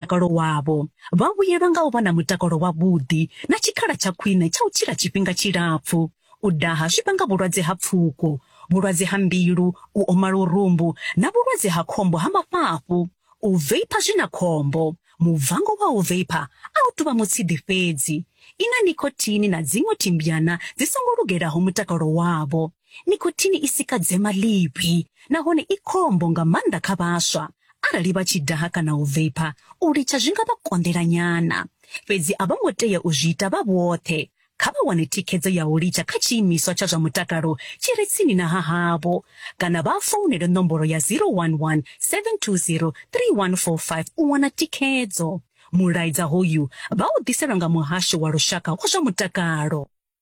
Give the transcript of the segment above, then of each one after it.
mutakalo wavho, vha vhuyelwa nga u vha na mutakalo wavhuḓi na tshikhala tsha khwine tsha u tshila tshifhinga tshilapfu. U daha zwi vhanga vhulwadze ha pfuko, vhulwadze ha mbilu, u oma lurumbu na vhulwadze ha khombo ha mafhafhu. U veipha zwi na khombo. Mubvango wa u veipha a u tou vha mutshidi fhedzi. I na nicotine na dziṅwe thimbyana dzi songo lugelaho mutakalo wavho. Nikhothini i sika dzema ḽivhi nahone i khombo nga maanḓa kha vhaswa. Arali vha tshi daha kana u veipha, u litsha zwi nga vha konḓela nyana. Fhedzi a vho ngo tea u zwi ita vha vhoṱhe. Kha vha wane thikhedzo ya u litsha kha tshiimiswa tsha zwa mutakalo tshi re tsini na hahavho kana vha founele nomboro ya 011 720 3145 u wana thikhedzo. Mulaedza hoyu vha u ḓiselwa nga Muhasho wa Lushaka wa zwa Mutakalo.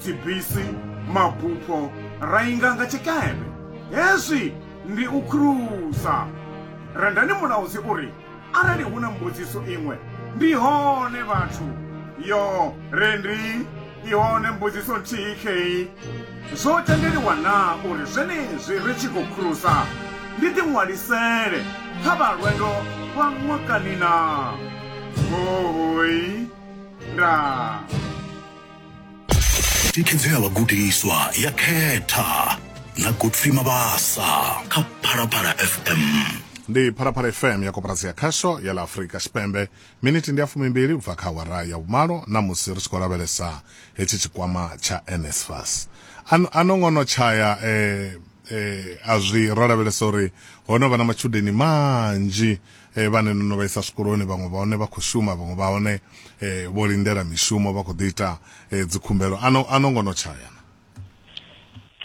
dzibisi, mabupho ra inga nga tshikepe. Hezwi ndi u krusa. Rendani mulaudzi u ri, Arali hu na mbudziso iṅwe, ndi hone vhathu. Yo, Rendi, i hone mbudziso nthihi khei. Zwo tendeliwa naa uri zwenezwi ri tshi khou krusa ndi ḓiṅwalisele kha vha lwendo lwa ṅwakani naa? Hoooi. Ndaa. tikhedzea vhagudiswa ya khetha na godfrey mabasa kha phalaphala fm ndi phalaphala fm ya koporasi ya khasho ya la afurika tshipembe miniti ndi ya fumimbili u bva kha awara ya vhumalo na musi ri tshi khou lavhelesa hetshi tshikwama tsha nsfas An- a no ngono tshaya eh, eh, a zwi ro lavhelesa uri ho no vha na matshudeni manzhi eh, vhane no no vha isa zwikoloni vhaṅwe vha hone vha khou shuma vhaṅwe vha hone eh, vho lindela mishumo vha khou ḓi ita eh, dzikhumbelo a no- a no ngo no tshaya na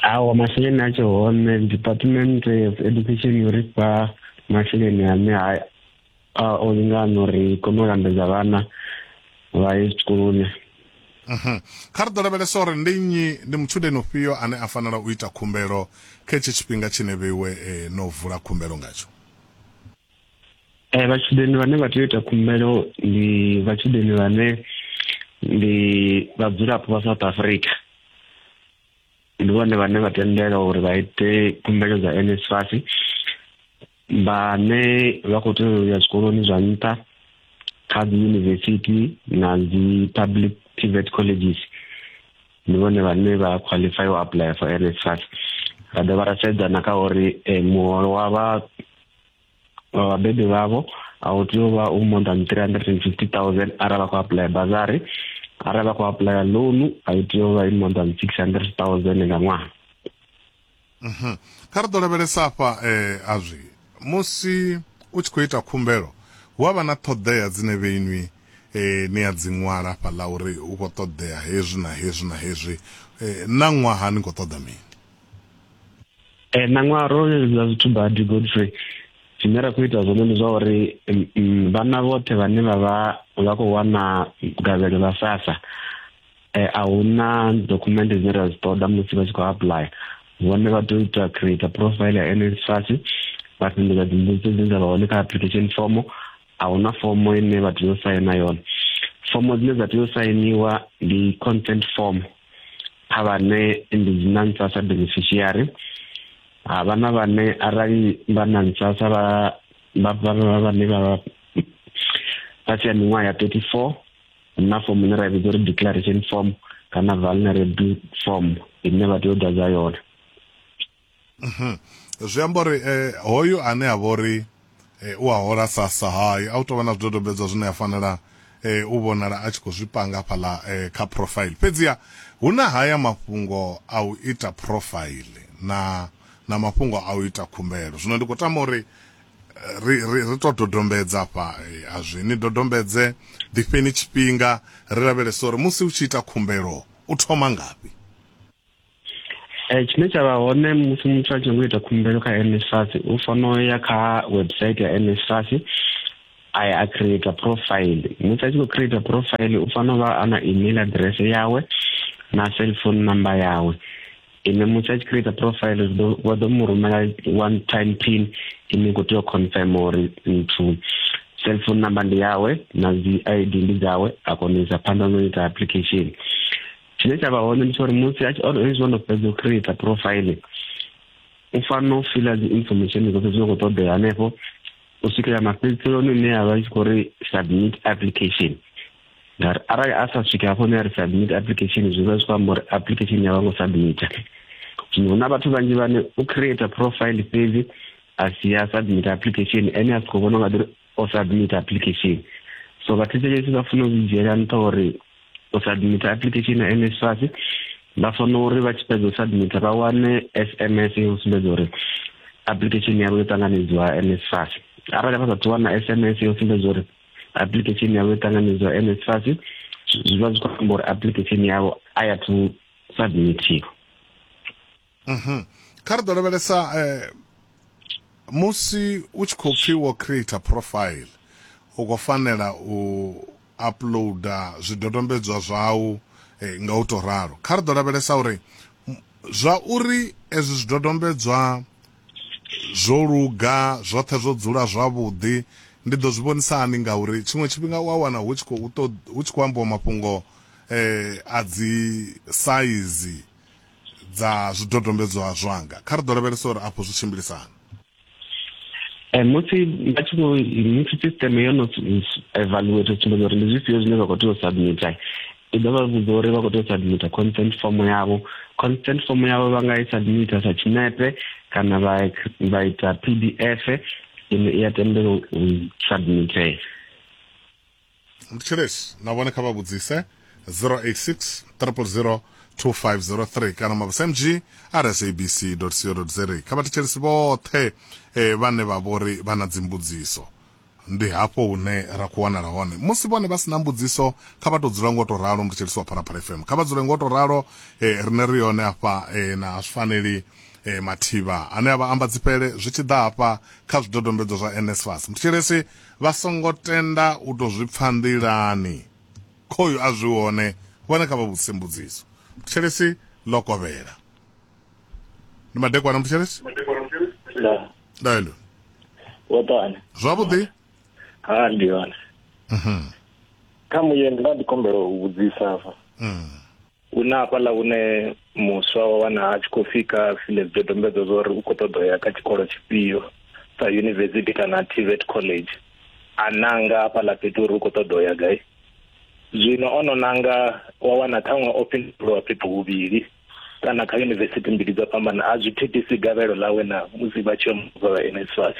awa masheleni a tshe hone department of education yo ri fha masheleni ane a- a o lingana uri kone u lambedza vhana vha ye zwikoloni Mhm. kha ri ḓo lavhelesa uri ndi nnyi ndi mutshudeni ufhio ane a fanela u ita khumbelo kha hetshi tshifhinga tshine vheiwe eh, no vula khumbelo ngatsho Eh, vhatshudeni vhane vha tea u ita khumbelo ndi vhatshudeni vhane ndi vhadzulapo vha south africa ndi vhone vhane vha tendela uri vha ite khumbelo dza nsfas vhane vha khou tea u ya zwikoloni zwa nṱha kha dzi yunivesithi na dzi public private colleges ndi vhone vhane vha qualify u apply for NSFAS ra dovha ra sedza na kha uri eh, muholo wa vha wa vhabebi vhavho a u tea u vha u more than 350000 arali vha khou apply bazari arali vha khou apply loan a i tea u vha i more than 600000 nga ṅwaha Mhm. kha ri ḓo lavhelesa afha eh, azwi musi u tshi khou ita khumbelo hu avha na ṱhoḓea dzine vheinwi eh, ni a dzi ṅwala afha ḽa uri hu khou ṱoḓea hezwi na hezwi na hezwi eh, na ṅwaha ni khou ṱoḓa mini eh, na ṅwaha ro leludza zwithu badi godfrey zwine ra khou ita zwone ndi zwa uri mm, mm, vhana vhoṱhe vhane vha vha vha khou wana gavhelo ḽa sasa eh, a hu na document dzine ra dzi ṱoḓa musi vha tshi khou apply vhone vha tea u ita create profile ya NSFAS vha fhindula dzimbudziso dzine dza vha hone kha application form a hu na fomo ine vha tea u saina yone fomo dzine dza tea u sainiwa ndi consent form kha vhane ndi dzi NSFAS beneficiary ha vha na vhane arali vha NSFAS vha vha vha vhane vha vha sia miṅwaha ya 34 na form ine ra vhidza uri declaration form kana vulnerable form ine vha tea u ḓadza yone mhm. zwi amba uri eh, hoyu ane a vha uri eh, u a hola sasa hai a u tovha na zwidodombedzwa zwine a fanela eh, u vhonala a tshi khou zwi panga hafhaḽa eh, kha profile fhedziha hu na haya mafhungo a u ita profile na na mafhungo a u ita khumbelo zwino ndi khou tama uri ri ri ri to dodombedza fha eh, azwi ni dodombedze ḓifheni tshifhinga ri lavhelesa uri musi u tshi ita khumbelo u thoma ngafhi Eh, tshine tsha vha hone musi muthu a tshi nyago ita khumbelo kha nsas u fanela u ya kha website ya nsas a ya a creator profile musi a tshi khou creator profile u fanela u vha a na email address yawe na cell phone number yawe ine muthu a tshi create profile vha ḓo mu rumela one time pin ine khou tea u confirm uri nthu cell phone number ndi yawe na dzi id ndi dzawe a kona u isa phanḓa no ita application tshine tsha vha hone ndi tsha uri musi a tshi hezwi o no fhedza u create profile u fanela u fila dzi information dzoṱhe dzine khou ṱoḓea hanefho u swikela mafhedziselo ni ne a vha tshi khou ri submit application ngauri arali a sa swike hafho ne a ri submit application zwi vha zwi khou amba uri application ya vha ngo submita zwino hu na vhathu vhanzhi vhane u create profile fhedzi a si ya submit application ene a si khou vhona nga ḓiri o submit application so vhathetshelesi vha funa u zwi dzhiela nṱha uri u submit application ya nsfas vha fanela uri vha tshi fhedza u submita vha wane s m s yo sumbedza uri application yavho yo ṱanganedziwa nsfas arali vha sa thu wana s m s yo sumbedza uri application yavo yotanganidzwa nsfas zviva zvi kwamba uri application yavo aya to submitiwa mhm. kha ri ḓo lavhelesa eh, musi u tshi khou pfhi wo create profile u khou fanela u uploada zwidodombedzwa zwau eh, nga u tou ralo kha ri ḓo lavhelesa uri zwa uri ezwi zwidodombedzwa Zwo luga, zwoṱhe zwo dzula zwavhuḓi. Ndi ḓo zwi vhonisa hani? Ngauri tshiṅwe tshifhinga u a wana hu tshi khou ṱoḓ, hu tshi khou ambiwa mafhungo a dzi saizi dza zwidodombedzwa zwanga. Kha ri ḓo lavhelesa uri afho zwi tshimbilisa hani. Musi vha tshi khou, musi sisiṱeme yo no evaluator, u sumbedza uri ndi zwifhio zwine vha khou tea u submitter. ndi ḓo vha vhudza uri vha khou tea u submita consent form yavho consent form yavho vha nga i submita sa tshinepe kana vha vha ita p d f ine i a tendela u submitea ndi tshelesi na vhone kha vha vhudzise 086 000 2503 kana mabasa mg rsabc co za kha vha thetshelesi vhoṱhe eh, vhane vha vhori vha na dzimbudziso Ndi hafho hune ra khou wanala hone. Musi vhone vha si na mbudziso, kha vha tou dzula nga u tou ralo, muthetshelesi wa Phalaphala FM. Kha vha dzule nga u tou ralo, riṋe ri hone hafha na a zwi faneli mathivha ane a vha amba dzifhele zwi tshi ḓa hafha kha zwidodombedzwa zwa NSFAS. Muthetshelesi, vha songo tenda u tou zwi pfa nḓilani, khoyu a zwi hone, vhone kha vha vhudzise mbudziso. Muthetshelesi, Ḽo kovhela. Ndi madekwana, muthetshelesi? Ndaa. ndaelo wo ṱoana zwavhuḓi ha ndi hone mhm. kha muye nda ndi kombela u vhudzisa fa mm. hu na hafhaḽa hune muswa wa wana a tshi khou fika file zwidodombedzwa zwa uri u khou ṱoḓa ya kha tshikolo tshifhio sa university kana tvet college a nanga hafhaḽa fhethu uri u khou ṱoḓa ya gai zwino ono nanga wa wana ṱhaṅwe o fhindulwa fhethu huvhili kana kha yunivesithi mbili dzo fhambana a zwi thithisi gavhelo ḽawe na musi vha tshi omuvha vha NSFAS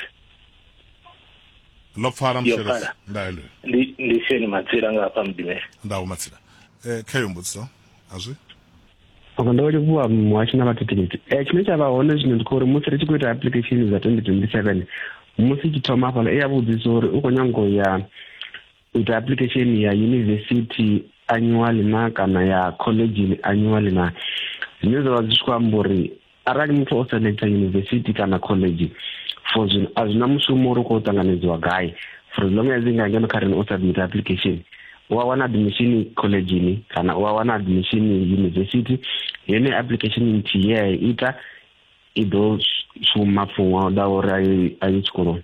ḽo pfala mshelesa ndaelo ndi ndi sheni matsila nga hafha mudimela ndawo matsila eh kha yo mbudziso azwi Okay, ndo livhuwa muhashi na vhathikhithi um eh, tshine tsha vha hone zwino ndi khou uri musi ri tshi khou ita application dza 2027 musi tshi thoma hafhaḽa i ya vhudzisa uri u khou nyango ya u ita application ya university annually na kana ya college annually na zwine zwa vha zwi tshi khou amba uri arali muthu o selecta university kana college for zwino a zwi na mushumo uri u khou ṱanganedziwa gai for as long as nga ngeno kha rena o submit application u a wana admission collegeni kana u a wana admission university yone application nthihi ye a i ita i ḓo shuma for ṅwaha u ḓaho uri a ye tshikoloni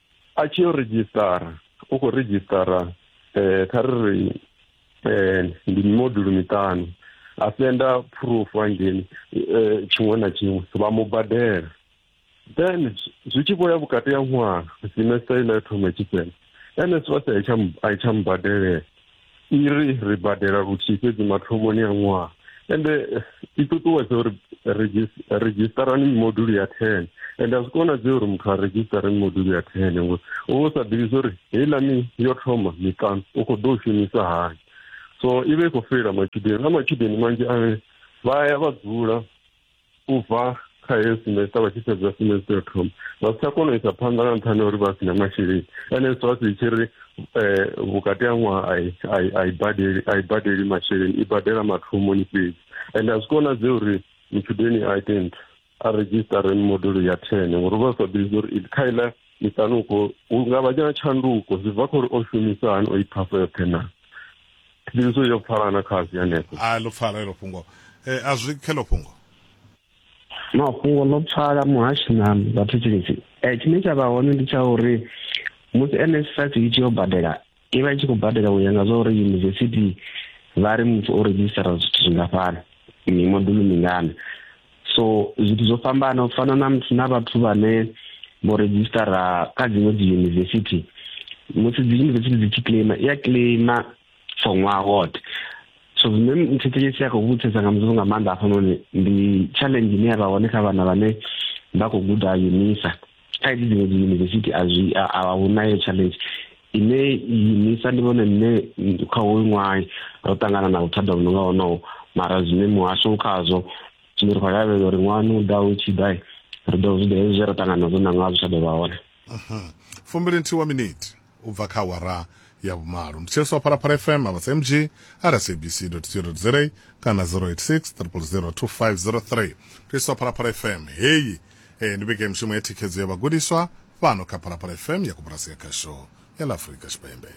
a tshi yo redzhisitara u khou redzhisitara um kha ri ri um ndi mimodulo miṱanu a senda phurufu hangeni um tshiṅwe na tshiṅwe vha mu badela then zwi tshi vho ya vhukati ha ṅwaha semester ine ya thoma tshifhela nss a i tsha mubadelela i ri ri badela luthihi fhedzi mathomoni a ṅwaha ende i ṱuṱuwedza uri redzhistarani mimodulo ya ten ende a zwi konadzei uri muthu a redzhisitare mimodulo ya ten ngori u vha u sa ḓivhi zwa uri heiḽani yo thoma miṱanu u khou ḓo u shumisa hani so i vha i khou feila matshudeni na matshudeni manzhi ane vha ya vha dzula u bva kha heyo semester vha tshi fhedza semester yo thoma vha si tsha kona u isa phanḓa nga nṱhani uri vha si na masheleni ene zwi vha si tshi ri eh, vhukati ha ṅwaha a i badeli a i badeli masheleni i badela mathomoni fhedzi and a zwi konadze uri mutshudeni a ite nthu a redzhisitare mimodulo ya ten ngori vha sa ḓivhi uri kha iḽa miṱanuko hu nga vha tshanduko zwi bva kha uri o shumisa hani o i phasa yoṱhe naa ndi zwo yo pfala na kha zwi hanefho a lo pfala elo fhungo eh a zwi khelo fhungo mafhungo ḽo pfala muhashi na vhathu tshinzhi um eh, tshine tsha vha hone ndi tsha uri musi nsfas i tshi yo badela i vha i tshi khou badela u ya nga zwa uri yunivesithi vha ri muthu o redzhisitara zwithu zwingafhani mimodulo mingana so zwithu zwo fhambana u fana na muthu na vhathu vhane vho redzhisitara kha dziṅwe dzi yunivesithi musi dzi yunivesithi dzi tshi claima i a claima for ṅwaha woṱhe so zwine mthetshelesi a khou vhutsesa nga mudzimu nga maanḓa hafhanoni ndi challenge ine ya vha hone kha vhana vhane vha khou guda unisa khaedzi dziṅwe dzi yunivesithi a zwi a hu nayo challenge ine yinisa ndi vhone nṋe kha hoyu ṅwaha ro ṱangana na vhuthada vhu no nga honoho mara zwine muhasho khazwo zwine ri khou lavhelela uri ṅwani u ḓaho u tshi ḓa ri ḓo zwi ḓa hezwi zwe ra ṱangana nazwo na ṅwaha zwi tsha ḓo vha hone fumbili nthihi wa miniti u bva kha awara ya vhumalo. Ndi Tshiliswa Phalaphala FM, Avhasa MG, rsabc.co.za kana 086 000 2503. Tshiliswa Phalaphala FM, heyi eh, ndi vhege mishumo ya thikhedzo ya vhagudiswa fhano kha Phalaphala FM ya Koporasi ya Khasho ya ḽa Afurika Tshipembe.